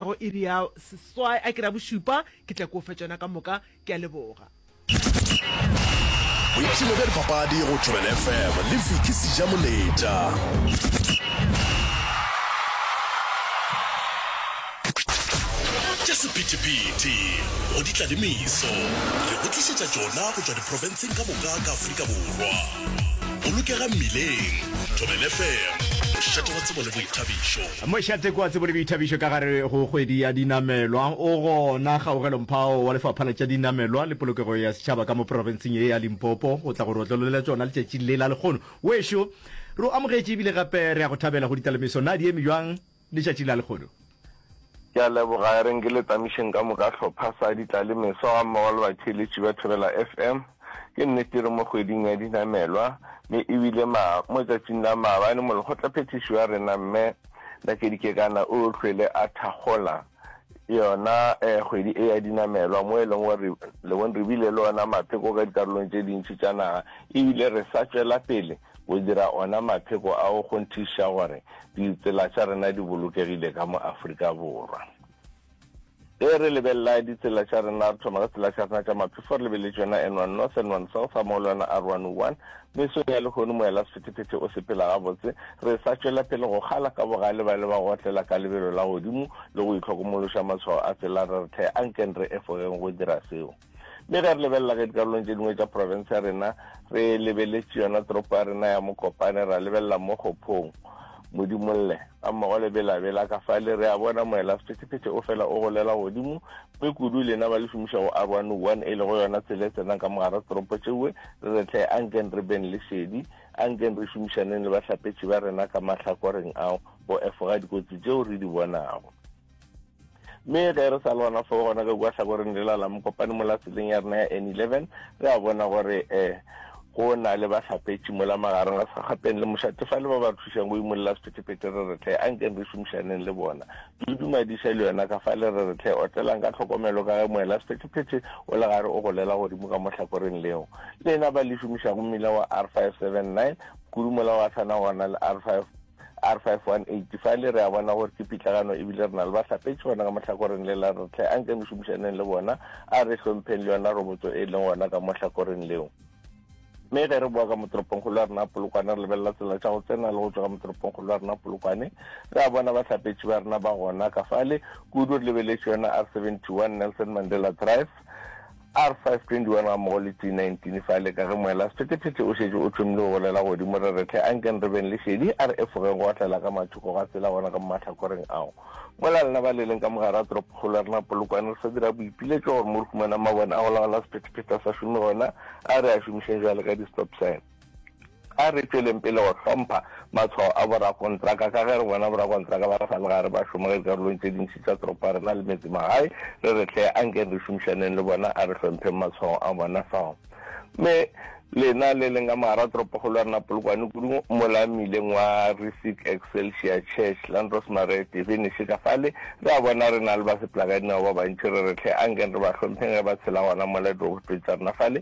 go iri ya seswai a ke re ya bošupa ke tla ko fe tšona ka moka ke a leboga boipshino bja dipapadi go tšwelele fm le viki seja moletša tša sephethephethe go di tla le meso re go tlišetša tšona go tšwa diprofenseng ka moka ka afrika borwa bolokega mmileng tšwelele fm mošate wa tsebo le boithabišo Mošateko a tsebole boithabišo ka gare go kgwedi ya dinamelwa. O gona kgaogelomphao wa lefapha la tša dinamelwa le polokego ya setšhaba ka mo profenseng ye ya Limpopo go tla go re otlelolela tšona letšatšing le la lekgono. Wešo, re o amogetše ebile gape re a go thabela go ditalemiso. Na di eme bjang letšatšing la lekgono? Ke a leboga, e reng ke le tamišeng ka moka hlopha sa ditlalemeso gammogo le batheeletši ba Thobela FM. Ke nnete re mo kgweding ya dinamelwa, mme e bile ma, mo letsatsing la maabane molekgotlaphethiši wa rena Mme Nakedi Kekana o hlwele a thakgola yona eh, kgwedi e ya dinamelwa mo e leng gore le bone re bile le ona mapheko ka dikarolong tše dintši tša naga ebile re sa tšwela pele go dira ona mapheko a go kgonthiša gore ditsela tša rena di bolokegile ka mo Afrika Borwa. Ge re lebelela ditsela tša rena, re thoma ka tsela tša rena tša maphefo, fo re lebeletse yona N1 North, N1 South, ga mmogo le yona R101. Mesong ya lehono moela sephethephethe o sepela gabotse, re sa tšwela pele go kgala ka bogale ba le ba go otlela ka lebelo la godimo le go itlhokomološa matshwao a tsela, re re the, a nkeng re efogeng go dira seo. mme ge re lebelela ge dikarolong tše dingwe tša porofense ya rena re lebeletše yona toropo ya rena ya mokopane ra lebelela mo kgophong modimolle ka mmogo le belabela ka fa le re a bona moela sephetephete o fela o golela godimo mme kudu lena ba le šomiša go r one one e lego yona tsela e tsenang ka mogara toropo tšeue re re tle a nkeng re beng le šedi a nkeng re šomišaneng le bahlapetši ba rena ka mahlakoreng ao go efoga dikotsi tšeo re di bonago mme ge re sa le gona fo gona ka kua tlhakoreng le lala mokopane mo la tseleng ya rena ya n eleven re a bona gore um go na le bahlapetši mo la magareng a segapeng le mošatefa le ba ba re thušang go imolela sephetephete re re tle a nkeng re šomišaneng le bona dudumadiša le yona ka fa le re re tle otlelang ka tlhokomelo ka ge moela sephetephete o le gare o golela godimo ka mohlakoreng leo lena ba le šomišago mmila wa r five seven nine kudu mola wa tshwana gona le r five R518, Fa e le re a bona gore ke pitlagano e bile re na le bahlapetši gona ka mohlakoreng le la re tle, anke re šomišaneng le bona, a re hlompheng le yona robotso e leng gona ka mohlakoreng leo. Mme ge re boa ka motoropongkgolo wa rena Polokwane re lebelela tsela tša go tsena le go tšwa ka motoropongkgolo wa rena Polokwane, re a bona bahlapetši ba rena ba gona ka fale, kudu re lebeletše yona R71, Nelson Mandela Drive, R521 gammogo le T19 fale ka ge moela sephethephethe o šetše o thomile go golela godimo. Re re hle, ankeng re beng le šedi, a re efogeng go otlela ka mathoko ga tsela gona ka mo mahlakoreng ao. Mola lena ba le leng ka mo gare ga toropokgolo ya rena Polokwane, re sa dira boipiletšo gore mo re humanang mabone a go laola sephethephethe a sa šome gona, a re a šomišeng bjale ka di-stop sign. A re tšweleng pele go hlompha matshwao a borakontraka. Ka ge re bona borakontraka ba re sa le gare ba šoma ka dikarolong tše dintši tša toropo ya rena le metsemagae, re re hle a nkeng re šomišaneng le bona, a re hlompheng matshwao a bona fao. Mme lena le leng ka mogara toropokgolo ya rena Polokwane, kudu mola mmileng wa Rissick Excelsior Church, Landrosmare Divinishí ka fale, re a bona re na le basepelagadinao ba bantši, re re hle a nkeng re ba hlompheng ge ba tshela gona mola dirobotong tša rena fale,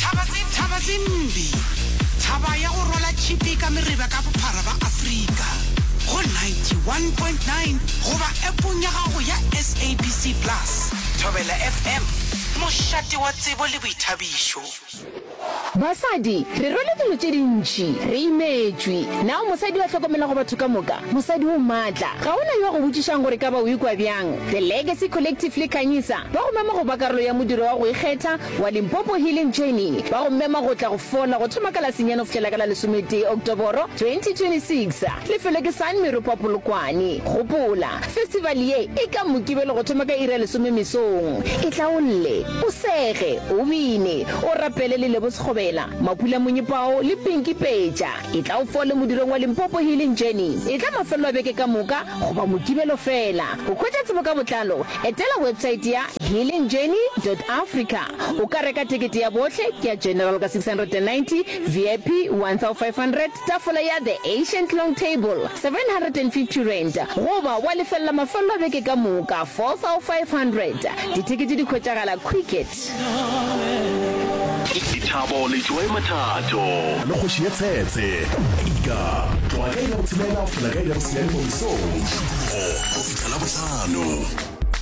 Thaba tse thaba tse mbi Thaba ya go rwala tšhipi ka mereba ka bophara ba Afrika go 91.9 goba appong ya gago ya SABC Plus. Thobela FM, mošate wa tsebo le boithabišo. Basadi, re rwele dilo tše dintši, re imetšwe. Na o mosadi yo a hlokomelago batho ka moka? Mosadi o matla. Ga go na yo a go botšišang gore ka ba o ikwa bjang. The Legacy Collective le Khanyisa Ba go mema go ba karolo ya modiro wa go ikgetha wa Limpopo Healing Journey. Ba go mema go tla go fola go thoma ka la senyane go fihlela ka la lesometee Oktoboro 2026. Lefelo ke San Meropa Polokwane. Gopola, festival ye e ka Mokibelo go thoma ka iri ya lesome mesong. Itlaolle, o sege, o bine, o rapele le Lebo Sekgobela, Mapula Monyepao le Pinky Peja. Etla o fole modirong wa Limpopo Healing Journey. Etla mafelelo a beke ka moka goba Mokibelo fela. Go hwetša tsebo ka botlalo, Etela websaete ya healingjourney.africa o ka reka tekete ya bohle ya General ka 690, VIP 1500, tafola ya The Ancient Long Table R750, goba wa lefella mafello a beke ka moka R4500. Ditekete di hwetšagala Quicket. Dithabo le joy mathato. A le kgoši ye tsetse. Ika, tloga ka iri ya botshelela go fihla ka iri ya bosenyane mo mesong. Šupologo go fihla Labohlano.